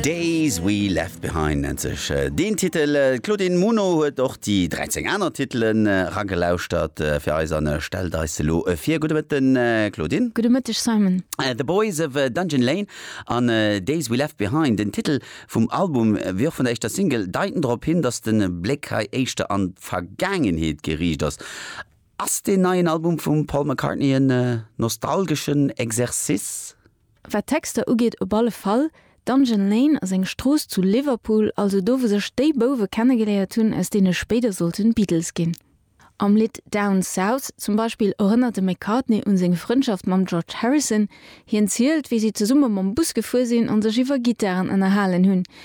Days we left behind nennt sech äh, deen Titel. Äh, D'Claudine Muno huet och déi 13 aner Titelen äh, ragelauschtert äh, fir eis an äh, stellt eis se lo äh, vir. Gudde Mëtten, äh, Claudine. Gudde Mëtteg, Simon. Äh, The Boys of äh, Dungeon Lane an äh, Days we left behind, den Titel vum Album äh, wéi och vun der éischter Single, deiten drop hin, datt de Bléck hei éischter an d'Vergaangenheet geriicht ass. Ass deen neien Album vum Paul McCartney en äh, nostalgeschen Exercice? Wat d'Texter ugeet, op alle Fall, Dungeon Lane ass eng Strooss zu Liverpool, also do wou sech déi Bouwe kennegeléiert hunn, aus deene spéider sollten Beatles ginn. Am Lidd Down South zum Beispill erënnert de McCartney un seng Frëndschaft mam George Harrison. Hien zielt, wéi si zesumme mam Bus gefuer sinn an sech iwwer Gittaren ënnerhalen hunn,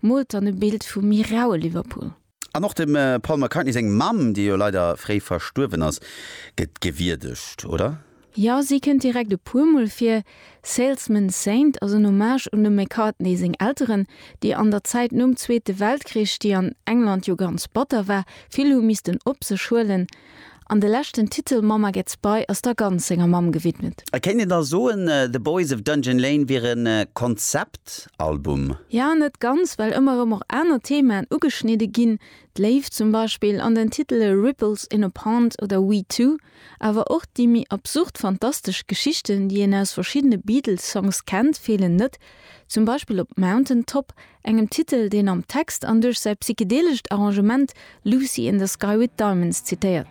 Moolt dann e Bild vum méi raue Liverpool. An och dem Paul McCartney seng Mamm, déi jo leider fréi verstuerwen ass, gëtt gewierdegt, oder? Jo, si kënnt direkt e puermol vir. Salesman's Saint ass en Hommage un dem McCartney seng Elteren, déi an der Zäit nom Zweete Weltkrich, déi an England jo ganz batter war, vill hu missten op sech huelen, An de leschten Titel Mama Gets By ass da ganz senger Mamm gewidmet. Et kéint een da soen, The Boys of Dungeon Lane wier e Konzeptalbum? Jo, net ganz, well ëmmer erëm och aner Themaen ugeschnidde ginn, d'Léift zum Beispill an den Titele Ripples in a Pond oder We Two, awer och déi méi absurd fantastesch Geschichten, déi een aus verschiddene Beatles-Songs kennt, feelen net, zum Beispill op Mountain Top engem Titel, deen am Text an duerch säi psychedelescht Arrangement Lucy in the Sky with Diamonds zitéiert.